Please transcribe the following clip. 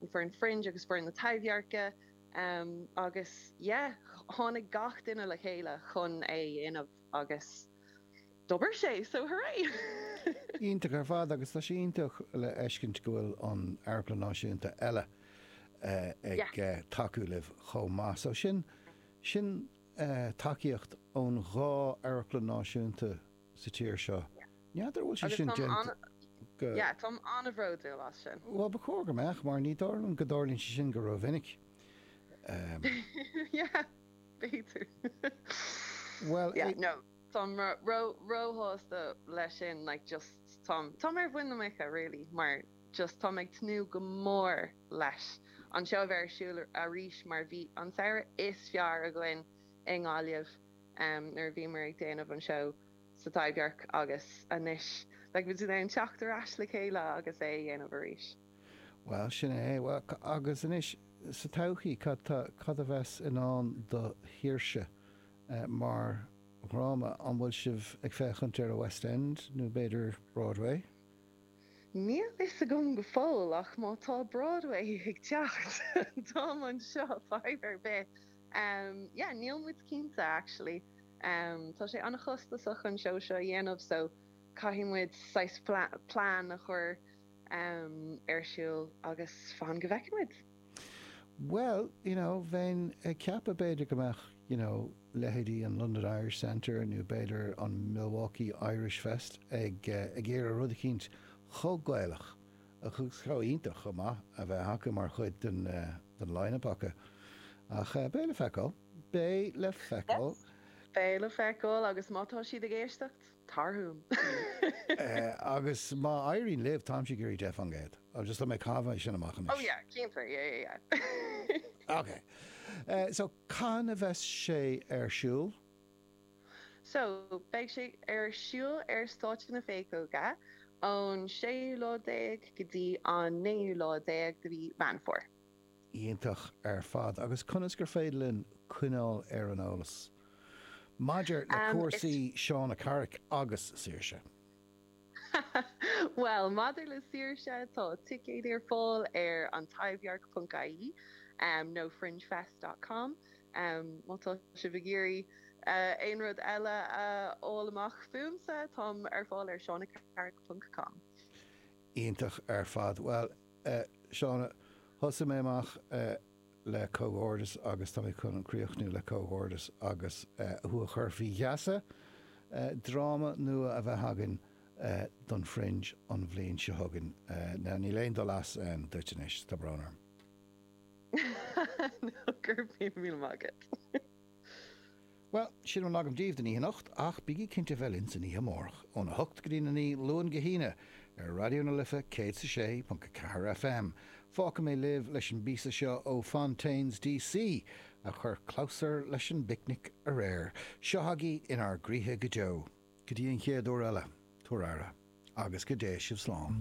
an foireann Fringe agus foireann na Taibhdheirce agus yeah tháinig gach duine le chéile chun é a dhéanamh agus d'obair sé so hooray! Iontach ar fad agus tá sé iontach le fheiscint go bhfuil an Amharclann Náisiúnta eile ag tacú libh chomh maith so sin sin tacaíocht ón dhá Amharclann Náisiúnta sa tír seo. N'fheadar an bhfuil sé sin déanta. Yeah, táim an-bhródúil as sin. Bhuel, ba chóir go mbeadh, mar ní dóigh liom go dtarlaíonn sé sin go rómhinic. Yeah, b'fhéidir. Bhuel, yeah, no. Táim róshásta leis sin, like, just táim ar mhuin na muice, really, mar just táim ag tnúth go mór leis an seó a bheith ar siúl arís mar bhí an samhradh is fearr againn i nGaillimh. nuair a bhíomar ag déanamh an seó sa Taibhdhearc agus anois, beidh muid in ann teacht ar ais le chéile agus é a dhéanamh arís. Bhuel, sin é. Agus anois, sa todhchaí, cad tá, cad a bheas i ndán do Shaoirse mar dhráma? An bhfuil sibh ag féachaint ar an West End nó b'fhéidir Broadway? Níl a fhios agam go fóill, ach má tá Broadway ag teacht, táim anseo, fadhb ar bith. Umm yeah níl muid cinnte actually umm tá sé an-chostasach an seó seo a dhéanamh so caithfidh muid saghas plean a chur umm ar siúl agus fan go bhfeicfidh muid. Bhuel you know bheinn ag ceapadh b'fhéidir go mbeadh you know leithéidí an London Irish Centre nó b'fhéidir an Milwaukee Irish Fest ag iarraidh rud eicínt chomh Gaelach agus chomh hiontach chomh maith a bheith acu mar chuid den den line-up acu ach beidh le feiceáil, beidh le feiceáil. Yes, beidh le feiceáil agus má tá siad ag éisteacht, tar chugam! Agus má éiríonn libh, táimse ag iarraidh deich fán gcéad. Just chun é a chaitheamh é sin amach anois. Oh yeah, cinnte, yeah, yeah, yeah. Okay, so cathain a bheas sé ar siúl? So, beidh sé ar siúl ar stáitse na Péacóige ón séú lá déag go dtí an naoú lá déag de mhí Mheán Fómhair. Iontach ar fad. Agus conas gur féidir linn coinneáil ar an eolas maidir le cúrsaí Shauna Carrick agus Saoirse? Bhuel, maidir le Saoirse, tá ticéid ar fáil ar An Taibhdhearc ponc ie nó Fringefest dot com má tá sibh ag iarraidh aon rud eile a fháil amach fúmsa, táim ar fáil ar ShaunaCarrick ponc com. Iontach ar fad. Bhuel, Shauna, thosaigh mé amach. le comhghairdeas agus táimid chun críochnú le comhghairdeas agus thú a chur faoi gheasa dráma nua a bheith againn don Fringe an bhliain seo chugainn. Now, níl aon dul as duit anois, tá brón orm. Ná cuir pian, míle maith agat. Bhuel, sin a bhfuil agam daoibh don oíche anocht, ach bígí cinnte a bheith linn san oíche amárach, óna hocht go dtí a naoi, Luan go hAoine, ar Raidió na Life 106.4 FM. Fágfaidh mé libh leis an bpíosa seo ó Fontaines D.C. a chuir clabhsúr leis an bPicnic aréir. Seo chugaibh In ár gCroíthe go deo. Go dtí an chéad uair eile, tugaigí aire, agus go dté sibh slán.